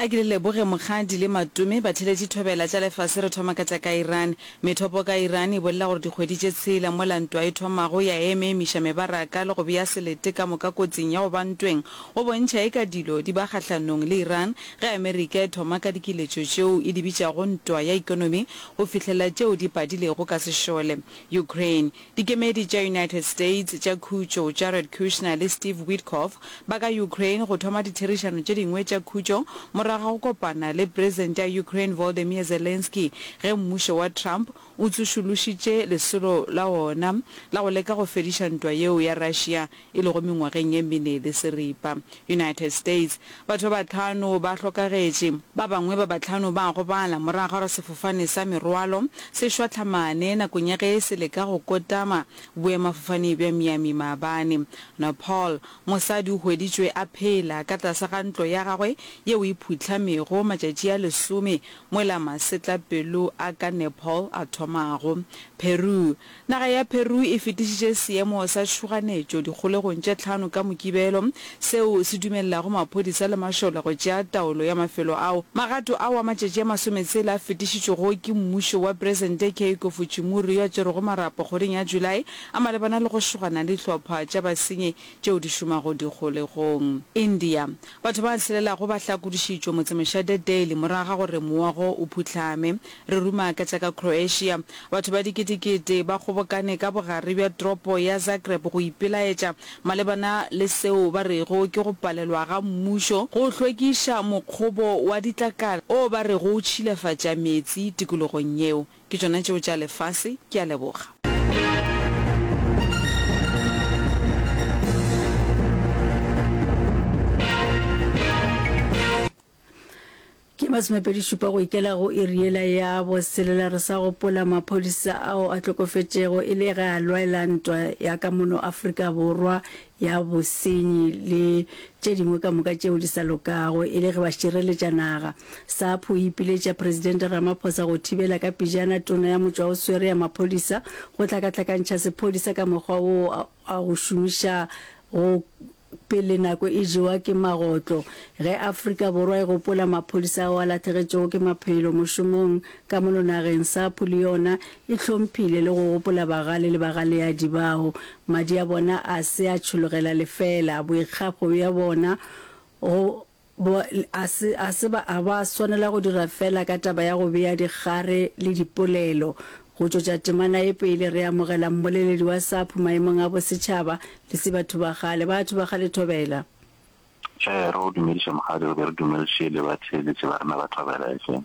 A ke le leboge mokgadi le matome batheletši thobela tša lefase re thoma ka tša ka Iran. Methopo ka Iran e bolela gore dikgwedi tše tshela mola ntwa e thomago ya eme emiša mebaraka le go bea selete ka moka kotsing ya go ba ntweng go bontšha eka dilo di ba kgahlanong le Iran ge Amerika e thoma ka dikiletšo tšeo e di bitšago ntwa ya ekonomi go fihlelela tšeo di padilego ka sešole Ukraine Dikemedi tša United States tša Khutšo, Jared Kushner le Steve Witkoff, ba ka Ukraine go thoma ditherišano tše dingwe tša khutšo morago ga go kopana le Presente ya Ukraine Volodymyr Zelensky ge mmušo wa Trump o tsošološitše lesolo la wona la go leka go fediša ntwa yeo ya Russia e lego mengwageng e mene le seripa. United States, Batho ba bahlano ba hlokagetše. Ba bangwe ba bahlano ba a gobala morago ga gore sefofane sa merwalo se šwahlamane nakong ya ge se leka go kotama boemafofane bja Miami maabane. Nepal, Mosadi o hweditšwe a phela ka tlase ga ntlo ya gagwe yeo e phuhlamego matšatši a lesome mola masetlapelo a ka Nepal a thomago. Peru, Naga ya Peru e fetišitše seemo sa tšhoganetšo dikgolegong tše tlhano ka Mokibelo, seo se dumelelago maphodisa le mašole go tšea taolo ya mafelo ao. Magato ao a matšatši a masometshela a fetišitšwego ke mmušo wa Presente Keiko Fujimori yo a tšerwego marapo kgweding ya July a malebana le go šogana le dihlopha tša basenyi tšeo di šomago dikgolegong. India, Batho ba hlelelago ba hlakodišitšwe motsemošate Delhi morago ga gore mowa go o phuhlame. Re ruma ka tša ka Croatia. Batho ba diketekete ba kgobokane ka bogare bja tropo ya Zagreb go ipelaetša malebana le seo ba rego ke go palelwa ga mmušo go hlwekiša mokgobo wa ditlakala o ba rego o tšhilafatša meetse tikologong yeo. Ke tšona tšeo tša lefase. Ke a leboga. Ke masomepedi šupa go ikela go iri yela ya boselela re sa gopola maphodisa ao a tlokofetšego e le ge a lwaela ntwa ya ka mono Afrika Borwa ya bosenyi le tše dingwe ka moka tšeo di sa lokago e le ge ba šireletša naga. SAPHU e ipiletša Presidente Ramaphosa go thibela ka pejana tona ya motšwa o swere ya maphodisa go hlakahlakantšha sephodisa ka mokgwa woo a go šomiša go Pele nako e jewa ke magotlo, ge Afrika Borwa e gopola maphodisa ao a lahlegetšego ke maphelo mošomong ka mono nageng, SAPU le yona e hlomphile le go gopola bagale le bagaleadi bao madi a bona a se a tšhologela lefeela, boikgafo bja bona go Bo, a se, a se ba, a ba swanela go dira feela ka taba ya go bea dikgare le dipolelo. Go tšwetša temana e pele, re amogela mmoleledi wa SAPHU maemong a bosetšhaba, le se batho ba kgale. Batho ba kgale, thobela. Ee, re go dumediša, Mokgalabje, re be re dumediše le batheeletši ba rena ba thobela. Efeng?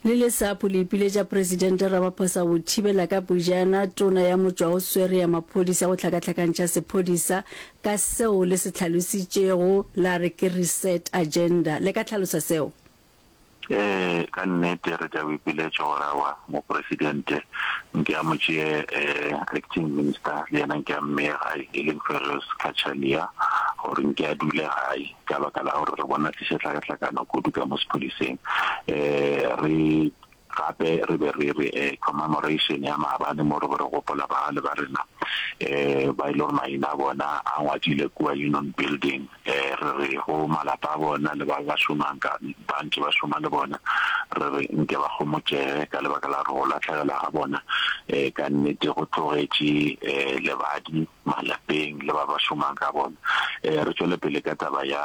Le le sapo le ipiletša Presidente Ramaphosa go thibela ka pejana tona ya motšwaoswere ya maphodisa go hlakahlakantšha sephodisa ka seo le se tlhalositšego la re ke reset agenda. Le ka tlhalosa seo? Ee, ka nnete re tla go ipiletša gore awa Mopresidente nke a mo tšee eh, Acting Minister le yena nke a mmeye gae e leng Ferrous Cachalia gore nke a dule gae. ka baka la gore re bona se se hlakahlakana kudu ka mo sephodiseng um re gape re be re re um commemoration ya maabane mo re go re gopola bagale ba rena um ba e le gore maina a bona a ngwadile kua union building um re re go malapa a bona le ba ba šomang ka ba ntse ba šoma le bona re re nke ba gomotšege ka lebaka la gore go latlhegela ga bona um ka nnete go tlogetše um lebadi malapeng le ba ba šomang ka bona. Re tšwele pele ka taba ya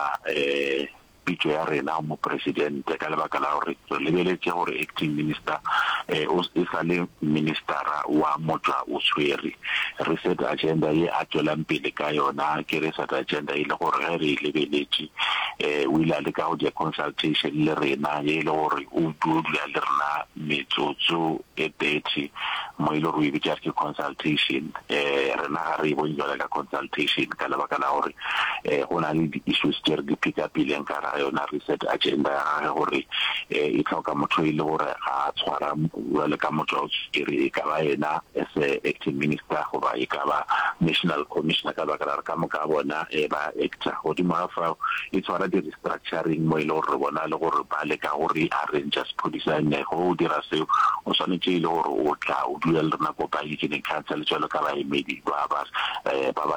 pitšo ya rena go Mopresidente ka lebaka la gore re lebeletše gore Acting Minister e sa le Ministera wa Motšwa o Swere. Reset Agenda ye a tšwelang pele ka yona ke Reset Agenda e le gore ge re e lebeletše o ile a leka go dira consultation le rena ye e le gore o tlo dula le rena metsotso e dirty mo e le gore o e bitša re ke consultation um rena ga re e bone jwale ka consultation ka lebaka la gore um go na le di-issues tše re di pick-upileng ka ga yona reset agenda ya gage gore um e tlhoka motho e le gore ga a tshwara jwale ka motho wa o tshwere e ka ba yena as a acting minister goba e ka ba national commissioner ka lebaka la gore ka moka bona um ba actor godimo ga fao e tshwara di structuring mo e le gore re bona le gore ba leka go re arranger sephodisa and ge o dira seo o swanetše e le gore o tla o dula le rena ko baekeneng council jalo ka baemedi ba ba ba ba